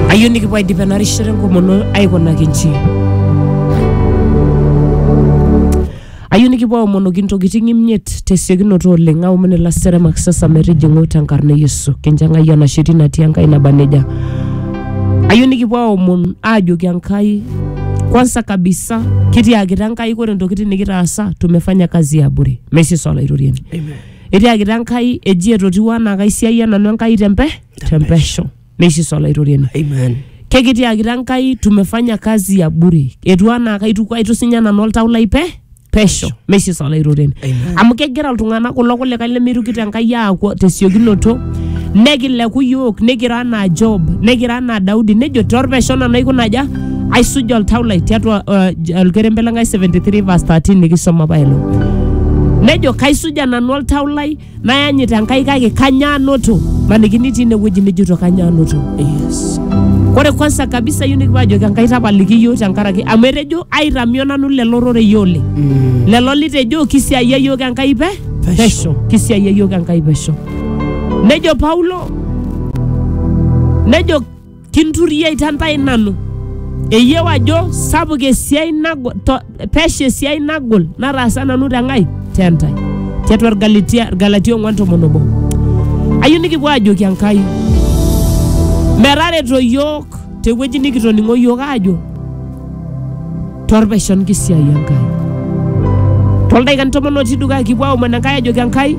ayieu nikipuo aidip ena rishata enkomono aikunaki nji ayieu nikipuo aomonoki ntokitin imiet tesiokinoto oleng aomon ilaseremak sasa metijing'u tenkarna e yesu kincho enkai enasheti natii enkai naba nejia ayieu nikipuo aomon aajoki enkai kwanza kabisa kitiakita enkai kore ntokitin nikitaasa tumefanya kazi ya bure meisisa olaitoriani etiakita enkai eji etotiwuo anaa kaisiayia nanu enkai tempe tempesho neishiso olaitoriani Amen. kekitiakita enkai tumefanya kazi ya bure etu anaa kaituku aitusinya nanu oltau lai pe pesho meishiso olaitoriani Amen. amu kegira iltung'anak kulo kulikae lemeirukito enkai aaku tesiokinoto nekileku yiok nikira anaa job nikira anaa daudi nejo torpesho nanu aikuna aja aisuja oltau lai tiatua uh, olkerembe lenkai 73 verse 13 nikisoma pailo nejo kaisuja nanu oltau lai nayanyit enkai kake kanyaanoto manikini tii inewueji nijoto kanyaanoto Yes. ore kwanza kabisa yieu nikipuo ajoki enkai tapaliki yiok tenkaraki amu etejo aitamio nanu lelo rorei oleng Mm. lelo litejo kisiayia yiok enkai pe Pesho. pesho kisiayia yiok enkai pesho nejo paulo nejo Kinturiai te ntae nanu. Eyieu ajo sapuk esiai nagol, to, pesha esiai nagol nataasa nanu te Nkai te ntae. Tiatua Irgalatia Irgalatia ong'uan tomon obo. Ayieu nikipuo aajoki Enkai metareto yiok tewueji nikitoning'o yiok aajo torpesho nkisiai Enkai. Toldaikani tomon otii dukuya kipuo aomon Enkai ajoki Enkai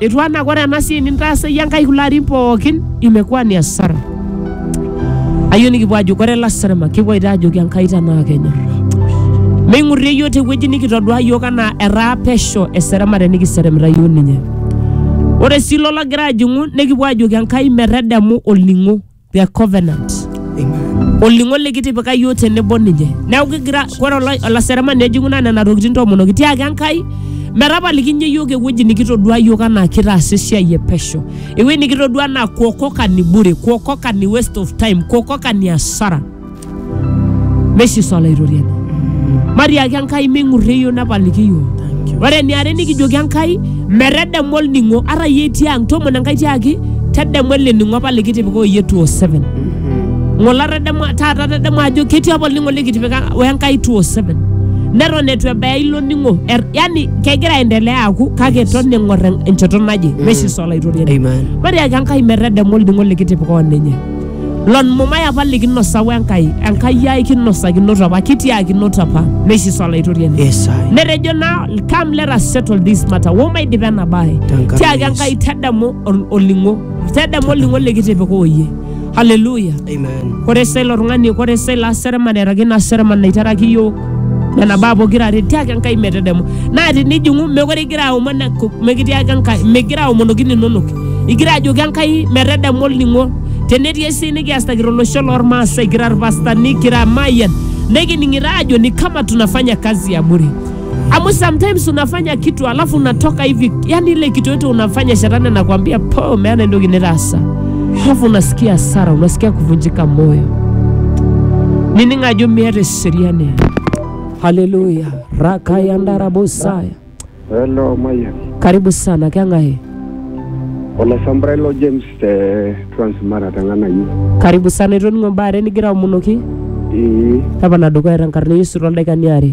Etu anaa ore ena siai nintaasa iyie Enkai kulo arin pookin imekuwa ni hasara. Ayieu nikipuo ajo ore lasarma kipuo aita ajoki Enkai tenaa kenyor. Meing'urrie iyiook tewueji nikitodua iyiook anaa etaa pesho eseremare nikiseremita iyiook ninye. Ore sii ilo logira ajing'u nikipuo ajoki Enkai metadamu olning'o. their covenant Amen. olning'o likitipika yiok tenebo ninye neeku kigira ore ola- olaseremani ejing'u naa nena tokitin toomonoki tiaki enkai metapalikinye yiok ewueji nikitodua yiok anaa kitaasa esiai e pesho ewueji nikitodua anaa kuokoka ni bure kuokoka ni waste of time kuokoka ni asara meshiso olaitoriani matiaki enkai ming'urrie iyiok nepaliki iyiok Thank you. ore eniare nikijoki enkai metedemu olning'o ata iyie itii ang tomon enkai tiaki tedemu ele ning'o apa likitipika oyie 207 ng'ole atademua taata atademua ajo ketii apa olning'o likitipika wenkai 207 neton etu ebaya ilo ning'o Er- yani kegira aendelea aku kake eton eng'or en- enchoto naje meshiso olaitoriani Amen. matiaki enkai metedemu olning'o likitipika oninye Lon mumai apa likinosa we Enkai, Enkai ai kinosakinote apa, kitiaakinote apa, neishiso Olaitoriani. Yes, I. Netejo naa, come let us settle this matter, wo maidipa ena bae. Tenkaraki Tiaki Yesu. Enkai tadamu ol- olning'o, tadamu olning'o likitipika oyie. Hallelujah. Amen. Kore selo tung'ani, kore selo aseremani, eraki ina seremani naitaraki iyiook, nena baa pokira are tiaki enkai metedemu naa tinijing'u mekore igira aomon enku- mikitiaki enkai migira aomonoki ninonok igira ajoki enkai metedemu olning'o tenetii esiai nikiasita tolosho lormaasai kira irpastani kira mayian nikining'ito aajo ni kama tunafanya kazi ya bure amu sometimes unafanya kitu alafu unatoka hivi yani ile kitu yote unafanya shetani anakwambia po meana entoki nitaasa alafu unasikia hasara unasikia kuvunjika moyo nining ajo miata sheria ne haleluya rakayandarabosaya Hello, Maya. karibu sana keng'ae Olasambrai lo James te Transmara tangana yu. karibu sana itoning'o mbaare nigira aomonoki Ii, tapana dukuya tenkarna yesu toldaikani are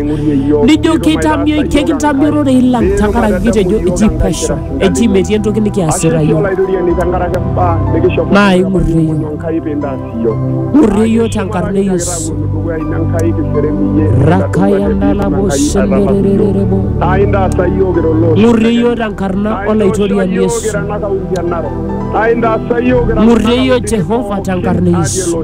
Nijo keitamio, kekintamio irorei lang tenkaraki kitejo eji pesho, eji metii entoki nikiasita yiok. Naa ing'urrie yiok. Ng'urrie yiok tenkarna e Yesu. Rakaya ndalabo shenderererebo. Ng'urrie yiok tenkarna Olaitoriani Yesu. Ng'urrie yiok Jehova tenkarna e Yesu.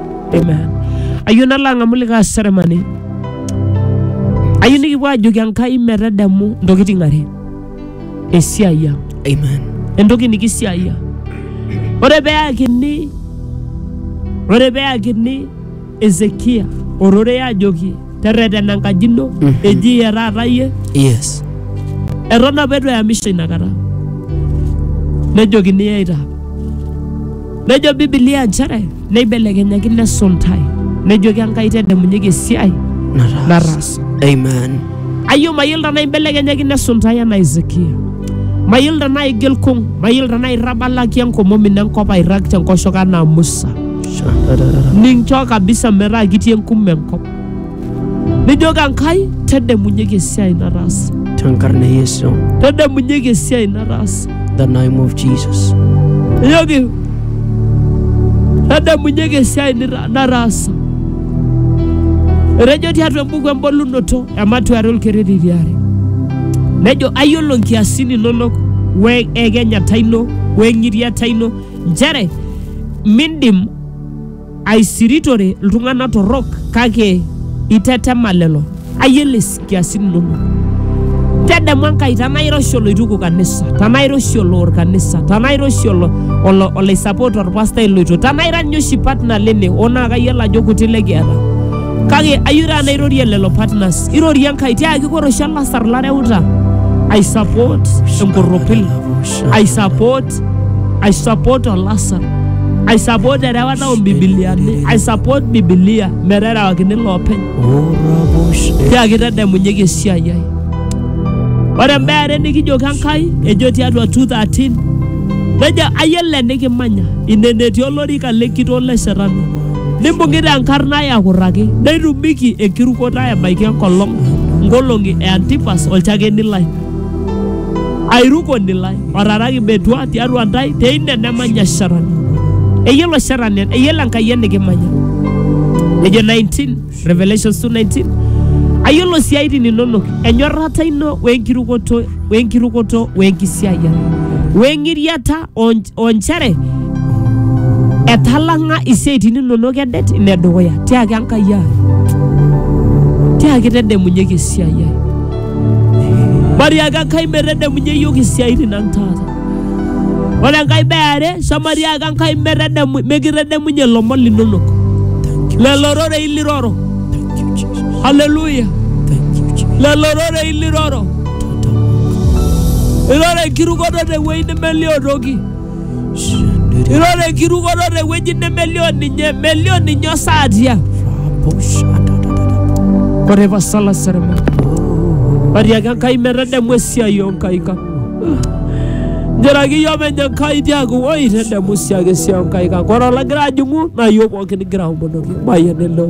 Amen. Ayieu nalo ang'amu likae aseremani. Ayieu nikipuo ajoki Enkai metadamu ntokitin are. Esiai ang. Amen. Entoki nikisiaia. Ore peyakini ore peyakini Ezekia ororei ajoki terretena enkaji ino Mhm. eji iyie taata iyie yes eton apa eitu eyamisho inakata nejokini eita nejo bibilia nchere neibelekenyaki nesuntai nejoki enkai tedemunyeki esiai nataas nataasa amen ayio mayiolo tenaa imbelekenyaki nesuntai enaa Hezekia mayiolo tenaa igil kung mayiolo tenaa irrabalaki enkomom ino enkop airrag tenkoshoke anaa Musa ninchoo kabisa metaa kitii enkume enkop nijoki enkai tedemunyeki esiai nataasa Tenkarna Yesu. tedemunyeki esiai nataasa The name of Jesus. nijoki tedemunyeki esiai nita- nataasa etejo tiatua embuku embolunoto ematuare olkereri tiare nejo ayiolo nkiasin inonok we ekenyata ino we ng'iriata ino Nchere mindim aisiritore iltung'ana torrok kake itetema lelo ayiolo isikiasin inono. Tedemu Enkai tenaa iroshi oloituku kanisa, tenaa iroshi oloor kanisa, tenaa iroshi olo, olo, olaisupport orpastai loito, tenaa ira ninye oshi partner lene oo naa kayiolo ajo kuti lekiata. Kake ayieu taata nairorie lelo partners, irorie Enkai tiaki ore oshi olasar lareuta aisupport enkorropil, aisupport I support Olasa. I support erewata o Bibiliani. I support Bibilia meterewakini loopeny. Tiaki tadamunyeki esiai ai. Ore imbaa are nikijoki Enkai ejo tiatua 2:13 nejo ayiolo enikimanya ine enetii olorika lenkitoo le shetani nimbung'ita enkarna ai akurraki neitumiki enkirukoto ai ebaiki enkolong nkolong'i e Antipas olchakeni lai airuko nilai otaraki metua tiatua ntae teine nemanya shetani eyiolo shetani eyiolo enkai enikimanya nejo 19 revelations 2:19 ayiolo siaitin inonok enyorrata ino wenkirukoto wenkirukoto wenkisiayiare weng'iriata on- onchere etalang'a isiaitin inonok edet ine dukuya tiaki enkai ai tiaki tedemunyeki esiai ai mariaki enkai metedemunye iyiook isiaitin ang taata ore enkai beare shamariaki enkai metedemu- mikitedemunye ilomon linonok lelo rorei liroro haleluya lelo rorei liroro irara enkirukoto tewueji nemelio toki irara enkirukoto tewueji nemelio ninye melio ninye osaatia ore pasala serema atiaki enkai metadamu esiai onkaik ang njeraki iyio menye enkai tiaku oi tadamu siake esiai onkaik ang ore olagira ajing'u naa iyio pookin igira aomonoki mayian eleo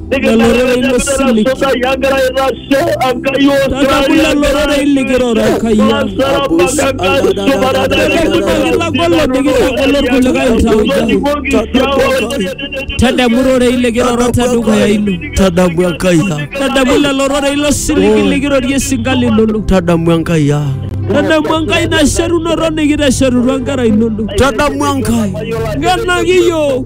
Leloreren Muslim. Tatabulla lororei likiroro kayya. Tadamu lororei likiroro tadukuya ino. tadamu enkai ang Tadamu lelororei lo siligi likirorie singali lolo. tadamu enkai ang Tadamu enkai nasherunoro nikitesherutua nkera inono. tadamu enkai Nganaki yiok.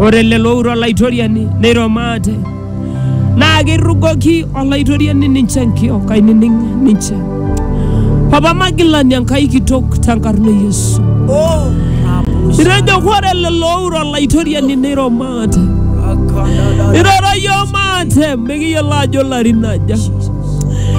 Ore lelo oure Olaitoriani neiro maate, naa keirrugoki Olaitoriani ninche nkiok, ainining ninche. Papa magilani Enkai kitok tenkarna e Yesu. Itejo ore lelo oure Olaitoriani neiro maate. Iroro iyiook maate mikiyiolo ajo larin aja.